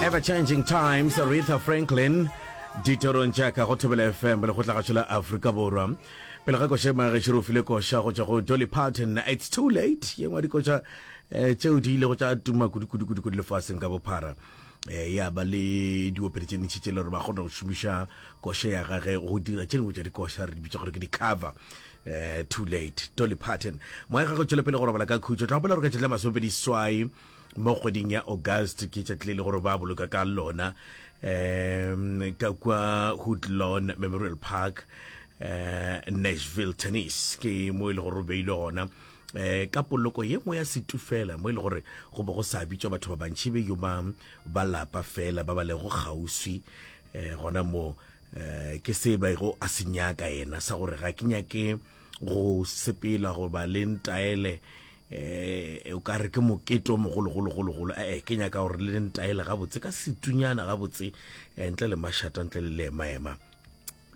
ever changing times aretha franklin ditorong jaaka go thobela fm le go tlagatšo la aforika borwa pele ga koša magešo re file koša go tšwa go dolly parton it's too late ye ngwa dikoša um tšeo di ile go tša tuma kudukudukuduku lefaseng ka bophara eh, ya ba le diopedi tše ntšhi tše le gore ba kgona go šomiša koša ya gage go dira tše dingwe tša dikoša re di bitša gore ke di-cover eh, too late dolly parton moya gagwe tšwele pele go robala ka khutšo tla gopela gore ka tšatši la masomepedi swai mo kgweding ya august ke tšatli le le gore ba boloka ka lona um ka kwa hoodlawn memorial park eh Nashville tennis ke mo e le gore o beile gona eh ka poloko ye nngwe ya setufela mo e le gore go be go sa bitswa batho ba bantši be yo ba ba lapa fela ba ba lego kgauswi eh gona mo eh ke se ba go a se nyaka yena sa gore ga ke nyake go sepela goba le ntaele eh o ka re ke mokete o mogologologologolo ee ke nyaka gore le ntaele gabotse ka setunyana gabotse eh, ntle le mašata ntle le leemaema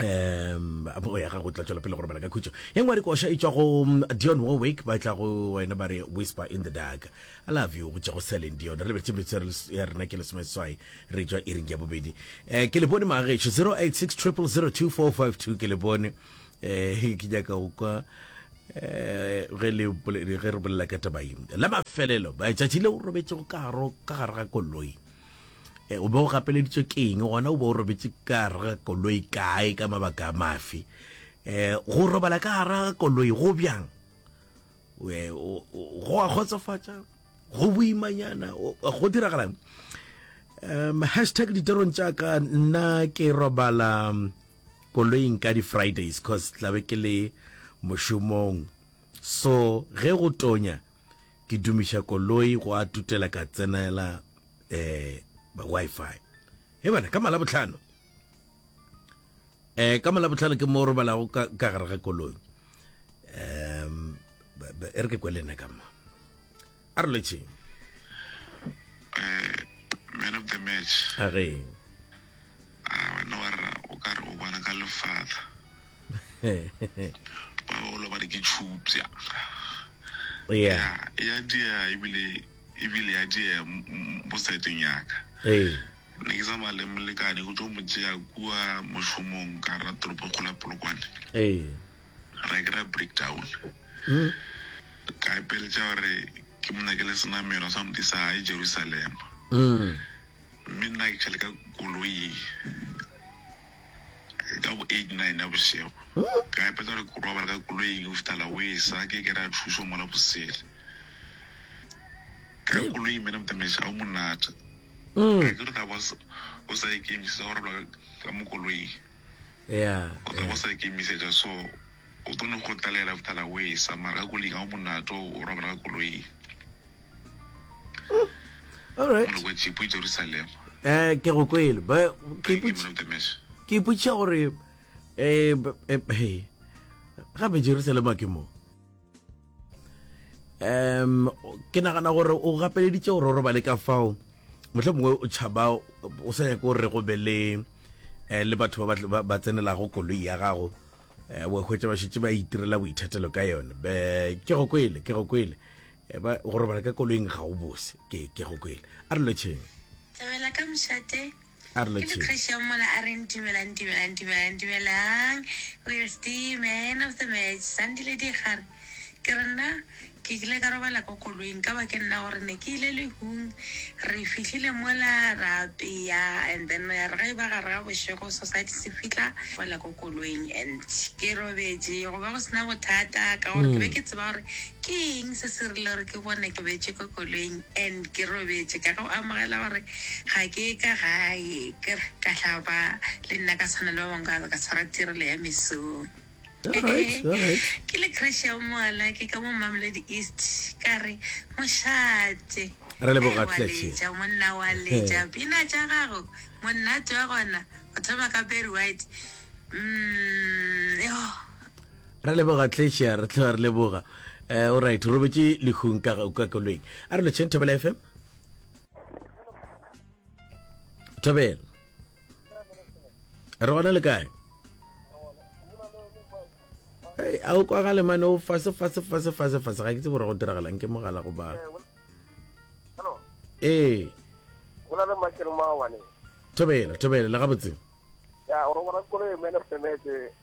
um o ya gago tla tswela pele go robala ka khutšo e ngwe dikoša e tswa go mm, dion warwick ba tla go wena ba re whisper in the dark i love you go tša go seleng dion re lebetse metso ya res- ya rena ke lesomeswai re tswa iring ya bobedi um ke le bone magešo 0860002452 ke le bone eh ke nyaka go kwa eh, ge le bole- ge re bolela ka tabaing la mafelelo ba tšatši le o robetše go karo ka gare ga koloi Eh, o be o gapeleditšwe ke eng gona o be o robetše ka gare ga koloi kae ka mabaka a mafe um go robala ka gare ga koloi go bjang Eh, o- o- go a kgotsofatša go boimanyana o- go diragalang um hashtag ditorong tša ka nna ke robala um, koloing ka di Fridays cos tla be ke le mošomong so ge go tonya ke dumiša koloi go a tutela ka tsenela um Wi-Fi. He bana ka Malabohlano um ka Malabohlano ke mo robalago ka gare ga koloi um e re ke kwelena ka mo. a re letšeng eh, man of the match a re a ah, wena wa rra o ka re o bona ka lefatla ba bolo ba re ke tšhupša ya ya dia ebile ebile ya dia mo seteng yaka ee ne ke tsamaya le molekane go tlo mo tšea kua mošomong ka ra toropo kgola polokwane ee ra ke ra break down ka ipeletša gore ke mo nyakele senamelo sa modi sa gae jerusalema mme nna ke tšhale ka koloi ka bo eight nine ya bošego ka ipeletša gore ke robala ka koloing go fitala o e sa ke ke ra thušo mola bosele ka koloing mene motamaiša ga o monate ga ke re tla ba o sa ikemišetsa go robala ka mo koloing ya ka go sa ikemisetša so o tlo no go tlalela after la way sa mara ka koling ga o monato o robala ka koloing all right go chipo jerusalem eh ke go kwele ba ke iputsa ke iputsa gore eh eh gape jerusalem ke mo um ke nagana gore o gapeleditse gore o robale ka fao motlho mongwe o tšhaba o sa nyake gore go be le um le batho ba tsenelago koloi ya gago um wa hwetsa ba šetse ba itirela boithatelo ka yone be ke go kwele ke go kwele eh, go robala ka koloing ga o bose ke go kwele a re lotšheng thabela ka mošate A re letšeng. Ke Christian mola a reng, Dumelang, dumelang, dumelang, dumelang. Where's the man of the match? Sandile Digare. Ke re, Nna, ke kile ka robala ko koloing, ka ba ke nna gore ne ke ile lehung. Re fihlile mola ra apea and then ya re ge e ba gare ga bošego society se fihla, fela ko koloing and ke robetše. Go be go se na bothata ka gore ke be ke tseba gore. Ke eng se se rile gore ke bone ke betše ko koloing and ke robetše? Ka go amogela gore ga ke ye ka gae, ke re ka hlapa le nna ka tshwana le ba bangwe ka be ka tshwara tirelo ya mesong. Alright, alright. Ke le crush ya moala ke ka mo Mamelodi East ka re mošate. Re leboga, Ai, wa Clergy. letša monna wa letša pina tša gago monnate wa gona go thoma ka Barry White mm, yoh. Ra leboga Tlesia, re tloga re leboga. Eh, alright, robetše lehung ka ka kolweng. A re lotšheng Thobela FM. Thobela. Re gona le kae? Hey, a o kwagale mane o fase fase fase fase fase ga ke tse bora go diragalang ke mogala go ba. Ee. Gona le makere mawane. Thobela, thobela le gabotse. Ya, o re bona kolo e mene semetse.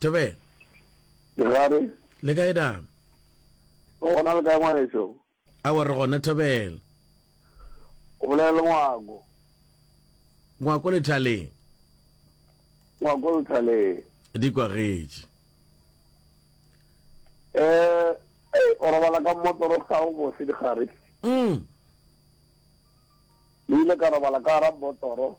Thobela. Ke gare. Le kae da? Go gona le kae ngwaneso? Awa re gona Thobela. O bolela le Ngwako. Ngwako lethaleng. Ngwako lethaleng. Di kwagetše. Eh, eh, o robala ka motoro ga o bose di gare. Mm. Ni le ka robala ka ra motoro.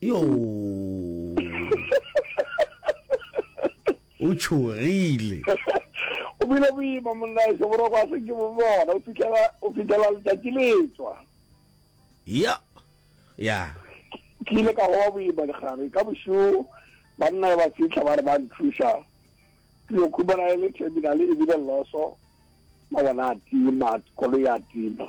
yo o tšhogile o bile boima monnaeso boroko a seke bo bona o fitlhela letšatši letswa ya ya ke ile ka goba boima legare ka bošoo banna ba fitlha ba re ba nthuša ke yo khumana e le terminale e bile loso mabona a tima koloi a tima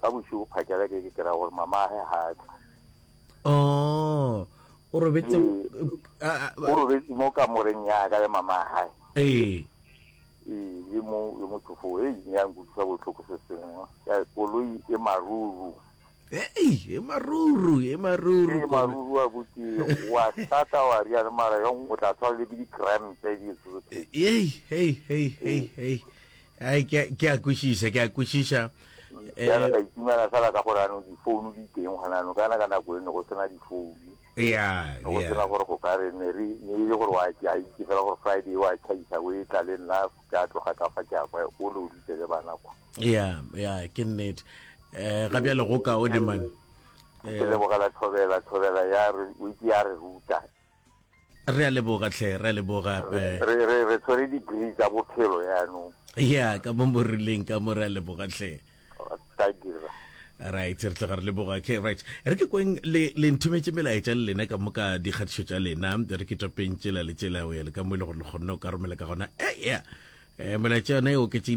ka bošigo phakela ke ke kry-a gore mamage ga a tle oh, o robetse o robetse mo kamoreng ya ka le mama gae ee le mo le motho fo e ne ya nkutlwisa botlhoko se sengwe ya koloi e maruru ei e maruru e maruru e maruru wa botse wa sata wa ria le mara yong o tla tshwara le ke di-crampe di ei ei ei ei ei Ai, ke a- ke a kwešiša, ke a kwešiša. Bjale Eh, ka itumela fela ka gore ano difounu di teng gona ano ka na ka nako e ne go sena difounu ya, ne go ya. sena gore go ka re ne re ne e le gore wa ke a itse fela gore friday wa tšhaisa o e tla le nna ke a tloga ka fa ke a kwa o le o ditse le bana kwa ya ya ke nnete um ga bjale go kaone man ke lebogela thobela thobela ya re o itse ya re ruta re a leboga tlhe re a leboga eh. re re re tshwere degree tsa bophelo yaanong ya ka mo mo rileng ka mo re a leboga tlhe ka dira right re tloga re leboga okay right re ke kweng le le nthometse melaetša le lena ka moka dikgatišo tša lena re ke topeng tšela le tšela o ya le ka mo e le gore le kgonne o ka romela ka gona e ya eh, melaetša yona e oketsegile